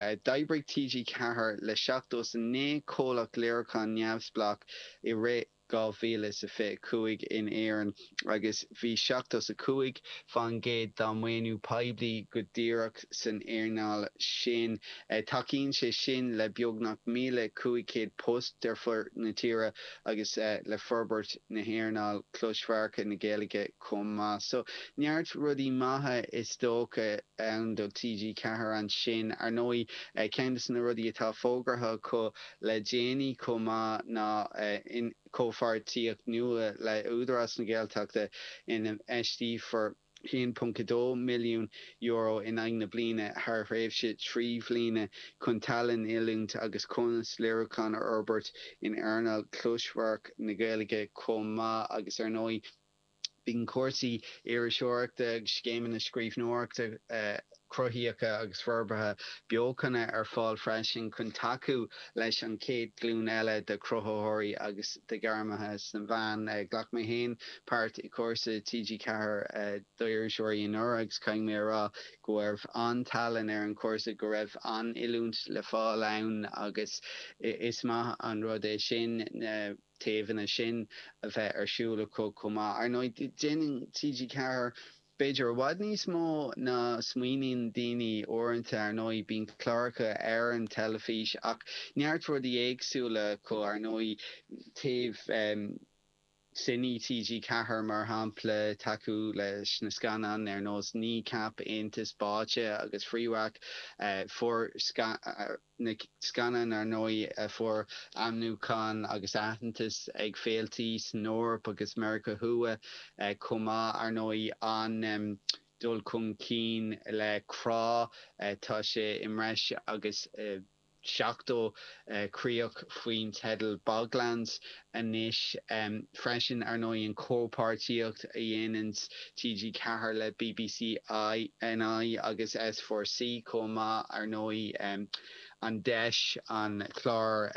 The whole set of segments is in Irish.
D'oibrigh TG4 le seachtó is a naoi comhlacht léiriúcháin neamhspleách i rith 2025 in Éirinn agus bhí seachtó is a cúig faoin gcéad dá maoiniú poiblí go díreach san earnáil sin. Tacaíonn sé sin le beagnach míle cúig chéad post ar fud na tíre agus le forbairt na hearnáil closamhairc na Gaeilge chomh maith. So, neart rudaí maithe is dócha ann do TG Ceathair ansin. Ar ndóigh, ceann de na rudaí atá fógartha acu le déanaí chomh maith ná comhpháirtíocht nua le hÚdarás na Gaeltachta infheisteofar. €1.2 milliún in aghaidh na bliana thar thréimhse trí bhliana chun tallann, oiliúint agus cumas léiriúcháin a fhorbairt in earnáil closamhairc na Gaeilge chomh maith agus ar ndóigh bíonn cúrsaí iriseoireachta agus scéimeanna scríbhneoireachta a cruthaíocha agus forbartha beochana ar fáil freisin chun tacú leis an chéad ghlúin eile de chruthaitheoirí agus de ghairmithe sna meáin. Ghlac mé féin páirt i gcúrsa TG4 d'iriseoirí anuraidh agus caithfidh mé a rá go raibh an-tallann ar an chúrsa, go raibh an-oiliúint le fáil ann agus is maith an rud é sin na taobhanna sin a bheith ar siúl acu chomh maith. Ar ndóigh, déanann TG4. B'fhéidir i bhfad níos mó ná smaoiníonn daoine uaireanta. Ar ndóigh, bíonn cláracha ar an teilifís ach neart rudaí éagsúla acu, ar ndóigh, taobh Cine, TG Ceathair mar shampla, tacú leis na scannáin ar nós Kneecap, Aontas Báite agus Fréwaka, fuair scannáin. na scannáin ar ndóigh a fuair ainmniúchán agus aitheantas ag féiltí san Eoraip agus Meiriceá Thuaidh chomh maith, ar ndóigh, an dul chun cinn le Crá, tá sé i mbreis agus 70 críoch faoin teideal Boglands anois freisin, ar ndóigh, an chomhpháirtíocht a dhéanann TG Ceathair le bbc NI agus S4 C chomh maith, ar ndóigh, an deis an clár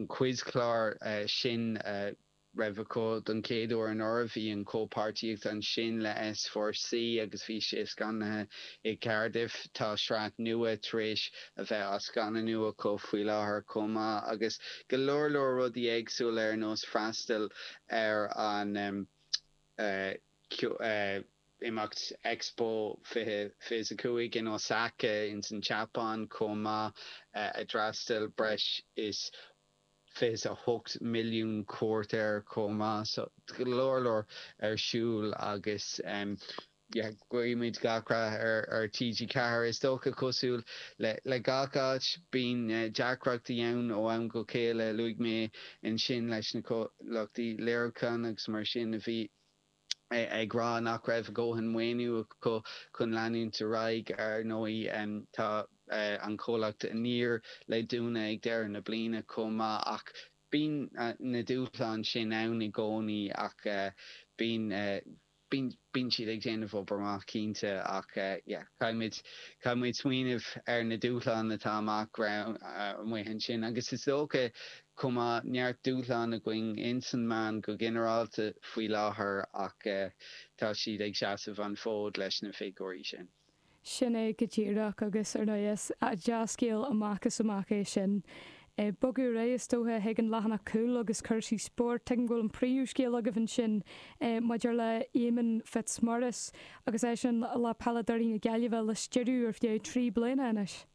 quizchlár sin a raibh acu don chéad uair anuraidh. Bhí an chomhpháirtíocht ansin le S4 C agus bhí sé scannánaithe i gCaerdydd. Tá sraith nua tar éis a bheith á scannánú acu faoi láthair chomh maith, agus go leor leor rudaí éagsúla ar nós freastal ar an imeacht Expo 2025 in Osaka ins an tSeapáin chomh maith ar fhreastail breis is 28 milliún cuairt air chomh maith, so go leor leor ar siúl agus yeah guímid gach rath ar TG Ceathair. Is dócha cosúil le gach áit bíonn deacrachtaí ann ó am go chéile, luaigh mé ansin leis na comhlachtaí léiriúcháin agus mar sin a bhí, ag rá nach raibh a dhóthain maoiniú acu chun leanúint ar aghaidh. Ar ndóigh, tá an comhlacht Aniar le dúnadh ag deireadh na bliana chomh maith, ach bíonn na dúshláin sin ann i gcónaí, ach bíonn bíonn siad ag déanamh obair amach cinnte, ach caithfidh muid smaoineamh ar na dúshláin atá amach romhainn ansin, agus is dócha chomh maith, neart dúshlán againn insna meáin go ginearálta faoi láthair ach tá siad ag seasamh an fód leis na figiúirí sin. Sin é go díreach, agus ar ndóigh, is dea-scéal amach is amach é sin. Ag bogadh ar aghaidh, is dócha, chuig an leathanach cúil agus cúrsaí spóirt, tuigim go bhfuil an príomhscéal agaibh ansin maidir le Éamonn Fitzmaurice agus eisean le peileadóirí na Gaillimhe a stiúradh ar feadh trí bliana anois.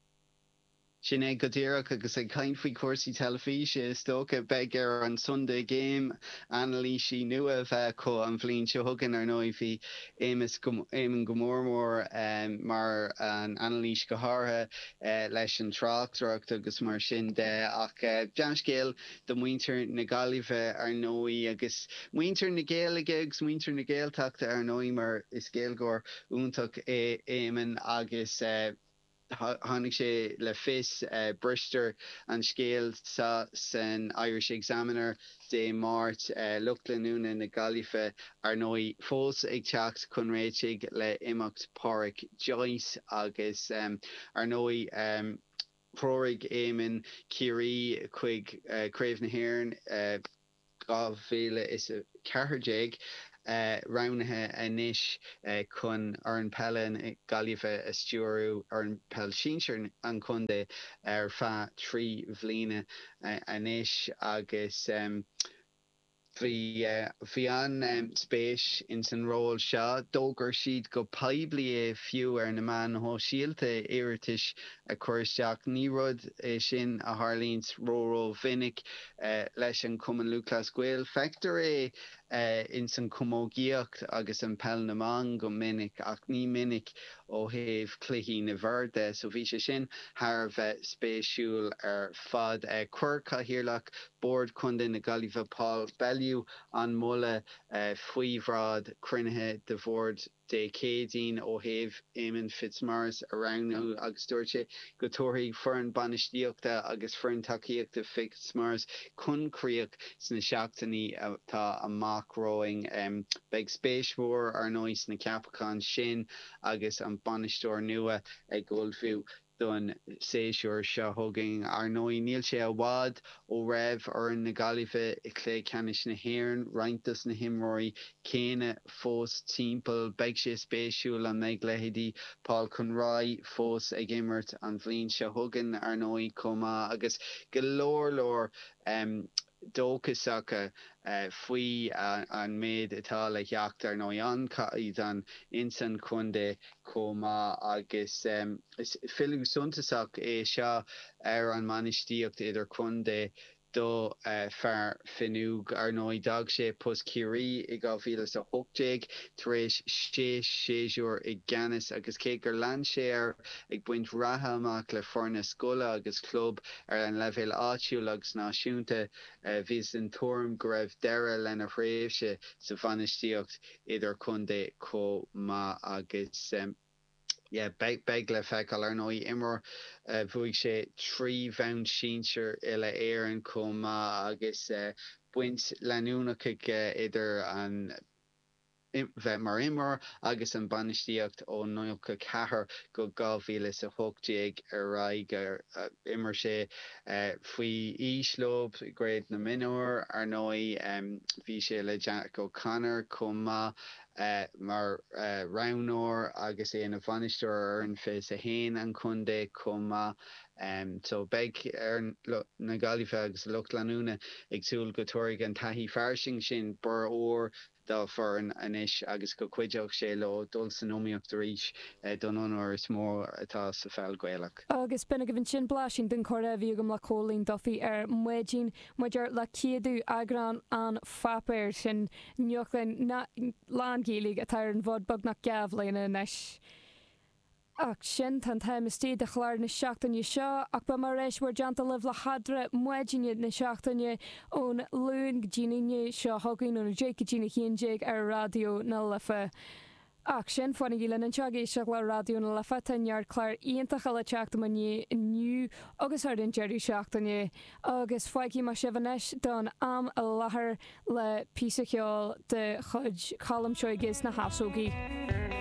Sin é go díreach, agus ag caint faoi chúrsaí teilifíse, is dócha, beidh ar an Sunday Game anailísí nua a bheith acu an bhliain seo chugainn, ar ndóigh. Bhí Éamonn go mór mór mar an anailís go háirithe leis an tráchtaireacht agus mar sin de, ach dea-scéal do mhuintir na Gaillimhe, ar ndóigh, agus muintir na Gaeilge agus muintir na Gaeltachta, ar ndóigh, mar is Gaeilgeoir iontach é Éamonn agus, Tháinig sé le fios, briseadh an scéal seo san Irish Examiner Dé Máirt, lucht leanúna na Gaillimhe, ar ndóigh, fós ag teacht chun réitigh le imeacht Páraic Joyce agus, ar ndóigh, threoraigh Éamonn Ciarraí chuig Craobh na hÉireann. 2014 roghnaithe anois chun foireann peile na Gaillimhe a stiúradh, foireann peile sinsir an chontae, ar feadh trí bhliana anois agus bhí bhí an-spéis ins an ról seo. D'fhógair siad go poiblí é fiú ar na meáin shóisialta, iarratais a chur isteach. Ní rud é sin a tharlaíonns ró-ró-mhinic leis an Cumann Lúthchleas Gael. Feictear é ins an chamógaíocht agus i bpeil na mban go minic, ach ní minic ó thaobh cluichí na bhfear de, so bhí sé sin thar a bheith spéisiúil ar fad. Chuir Cathaoirleach Bhord Chontae na Gaillimhe Paul Bellew an moladh faoi bhráid cruinnithe de Bhord. Dé Céadaoin ó thaobh Éamonn Fitzmaurice a roghnú agus dúirt sé go dtabharfaí foireann bainistíochta agus foireann tacaíochta Fitzmaurice chun críoch sna seachtainí atá amach romhainn. Beidh spéis mhór, ar ndóigh, sna ceapacháin sin agus an bainisteoir nua ag ullmhú. don séasúr seo chugainn. Ar ndóigh, níl sé i bhfad ó raibh foireann na Gaillimhe i Cluiche Ceannais na hÉireann, roinnt dos na himreoirí céanna fós timpeall. Beidh sé spéisiúil an mbeidh leithéidí Paul Conroy fós ag imirt an bhliain seo chugainn, ar ndóigh, chomh maith agus go leor leor dóchasach faoi an méid atá le theacht, ar ndóigh, an caighdeán ins an chontae chomh maith, agus is filleadh suntasach é seo ar an mbainistíocht idir-chontae d'fhear Fionnúige. Ar ndóigh, d'fhág sé post Chiarraí i 2018 tar éis sé séasúr i gceannas, agus cé gur lean sé air ag baint ratha amach le foirne scoile agus club, Ar an leibhéal áitiúil agus náisiúnta, bhíothas den tuairim go raibh deireadh lena thréimhse sa bhainistíocht idir-chontae chomh maith agus beidh le feiceáil. Ar ndóigh, imreoir, bhuaigh sé trí bhonn sinsir uile-Éireann chomh maith agus baint leanúnach aige idir an. bheith mar imreoir agus an bainistíocht ó 94 go 2018 ar aghaidh d'imir sé faoi aois leo i gCraobh na Mionúr. Ar ndóigh bhí sé le Jack O'Connor chomh maith mar roghnóir agus é ina bhainisteoir ar fhoireann 21 an chontae chomh maith Em so beidh na Gaillimhigh agus a lucht leanúna ag súil go dtabharfaidh an taithí fairsing sin borradh úr dá bhfoireann anois agus go cuideoidh sé leo dul san iomaíocht arís don onóir is mó atá sa pheil Ghaelach. Agus b'in agaibh ansin blaisín den chomhrá a bhí agam le Cóilín Duffy ar maidin maidir le céadú eagrán an pháipéir sin nuachta lán-Ghaeilge atá ar an bhfód beagnach dhá bhliana anois. Ach sin tá an t-am istigh de chlár na seachtaine seo, ach beidh mé ar ais in bhur dteannta libh le hEadra, maidineacha na seachtaine ón Luan go dtí'n Aoine seo chugainn, ón 10 go dtí'n 11 ar Raidió na Life. Ach sin, fanaigí linn anseo ag éisteacht le Raidió na Life, tá neart clár iontacha le teacht i mo dhiaidh inniu agus thar an deireadh seachtaine. Agus fágfaidh mé sibh anois don am i láthair le píosa ceoil de chuid Cholm Seoige is na hEasógaí.